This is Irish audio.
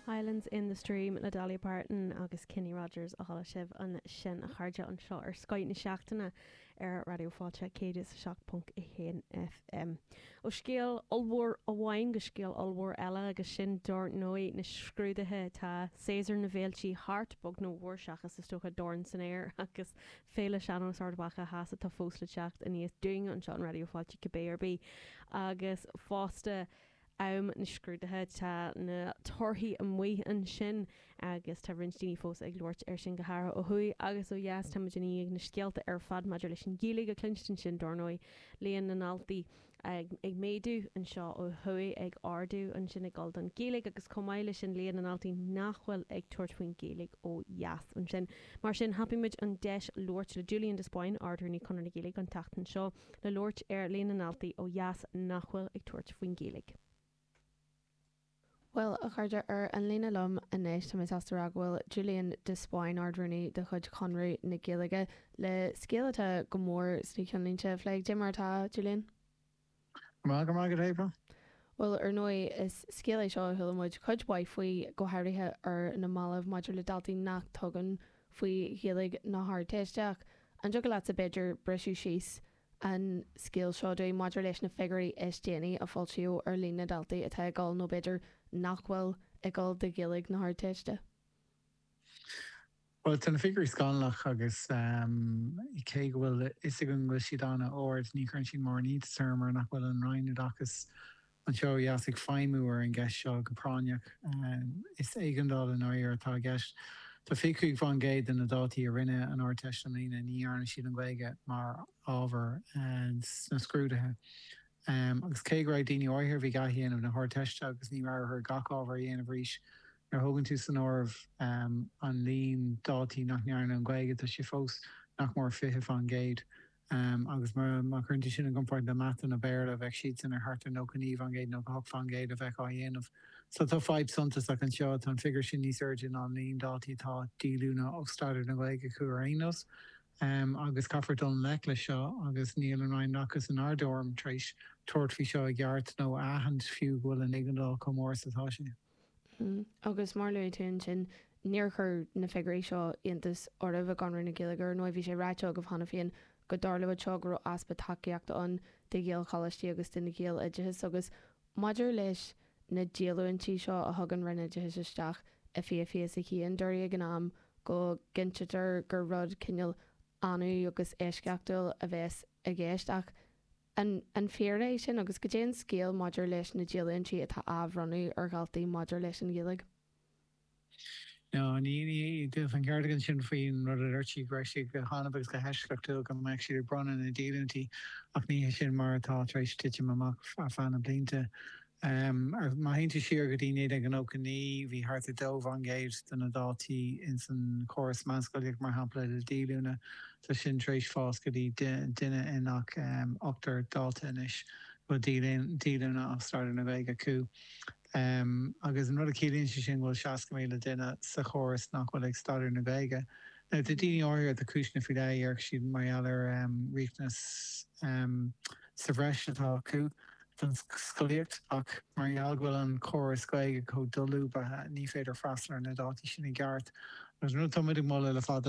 Islands in the Stream le Dolly Parton agus Kenny Rogers a chuala sibh ansin a chairde anseo ar Scoth na Seachtaine ar Raidió Fáilte 107.1 FM. Ó scéal ollmhór amháin go scéal ollmhór eile agus sin dar ndóigh na scrúduithe. Tá séasúr na bhféilte thart, beag nó mhór seachas is dócha Dorn san Aer agus Féile Sean-Nós Ard Mhacha Theas atá fós le teacht aníos dúinn anseo in Raidió Fáilte cibé ar bith agus fosta am na scrúduithe tá na torthaí amuigh ansin agus tá roinnt daoine fós ag labhairt air sin go háirithe ó thuaidh agus ó dheas. Táimid i ndiaidh na scéalta ar fad maidir leis an Ghaeilge a chluinstin sin dar ndóigh, líon na ndaltaí ag méadú anseo ó thuaidh, ag ardú ansin, ag dul don Ghaeilge agus chomh maith leis sin líon na ndaltaí nach bhfuil ag tabhairt faoin Ghaeilge ó dheas ansin. Mar sin thapaigh muid an deis labhairt le Julian de Spáinn, Ard-Rúnaí Chonradh na Gaeilge an tseachtain seo. le labhairt ar líon na ndaltaí ó dheas nach bhfuil ag tabhairt faoin Ghaeilge. Bhuel, a chairde, ar an líne liom anois tá mé sásta a rá go bhfuil Julian de Spáinn, Ard-Rúnaí de chuid Chonradh na Gaeilge, le scéal atá go mór sna ceannlínte a phlé. Cad é mar atá, Julian. Táim go maith, go breá. Bhuel, ar ndóigh, is scéal é seo a chuala muid cuid mhaith faoi, go háirithe ar na mallaibh, maidir le daltaí nach dtugann. faoi Ghaeilge na hArdteiste ach an dtiocfadh leatsa b'fhéidir briseadh síos an scéal seo dúinn maidir leis na figiúirí is déanaí a foilsíodh ar líon na ndaltaí atá ag dul nó b'fhéidir nach bhfuil ag dul do Ghaeilge na hArdteiste? Bhuel tá na figiúirí scannalach agus cé go bhfuil a fhios againn go bhfuil siad an-ard ní chuireann siad mórán iontais orm mar nach bhfuil an Roinn Oideachais anseo ó dheas ag feidhmiú ar an gceist seo go práinneach. Is éigeandáil i ndáiríre atá i gceist. Tá 25% de na daltaí a rinne an Ardteist i mbliana, ní dhearna siad an Ghaeilge mar ábhar sna scrúduithe. Agus cé go raibh daoine áirithe a bhí ag athdhéanamh na hArdteiste agus ní raibh orthu gach ábhar a dhéanamh arís. Nuair a thógann tú san áireamh an líon daltaí nach ndearna an Ghaeilge, tá sé fós nach mór 20%. Um agus má chuireann tú sin i gcomparáid le mata nó Béarla bheadh siadsan ar thart ar 99% nó 98% a bheadh á dhéanamh. So tá fadhb suntasach anseo. Tá an figiúr sin níos airde ná an líon daltaí atá díolúine ó staidéar na Gaeilge acu ar aon nós. Um agus caithfear dul i ngleic leis seo agus níl an Roinn Oideachais inár dtuairim tar éis tabhairt faoi seo i gceart nó a aithint fiú go bhfuil an éigeandáil chomh mór is atá sé. Agus mar a luaigh tú ansin, níor chuir na figiúirí seo iontas oraibh i gConradh na Gaeilge, ar ndóigh. Bhí sé ráite agaibh cheana féin go dtarlódh seo, go raibh easpa tacaíochta ann do Ghaelcholáistí agus don Ghaeloideachas. Agus maidir leis na díolúintí seo a thug an Roinn Oideachais isteach i 2021, dúradh ag an am, go gcinntítear gur rud cineál annamh agus eisceachtúil a bheas i gceist. Ach. An an fíor é sin agus goidé an scéal maidir leis na díolúintí atá á mbronnadh ar dhaltaí maidir leis an Ghaeilge? Nó ní ní dúirt an ceardchumann sin faoin rud a dúirt sí go raibh siad go hannamh agus go heisceachtúil go mbeadh siad ag bronnadh na díolúintí ach ní hé sin mar atá tar éis titim amach ar feadh na blianta. Má théann tú siar go dtí 1999 bhí thart ar dó faoin gcéad de na daltaí ins an chóras meánscolaíochta mar shampla le díolúine Tá sin tar éis fás go dtí duine i ngach ochtar dalta anois a bhfuil díolúine ó staidéar na Gaeilge acu agus an rud a chiallaíonn sé sin go bhfuil 60,000 duine sa chóras nach bhfuil ag staidéar na Gaeilge. Now tá daoine áirithe, tá cúiseanna faoi leith a deir siad mar gheall ar riachtanas sa bhreis atá acu don scolaíocht ach mar gheall go bhfuil an córas Gaeilge chomh dolúbtha ní féidir freastal ar na daltaí sin i gceart agus an rud atá muid ag moladh le fada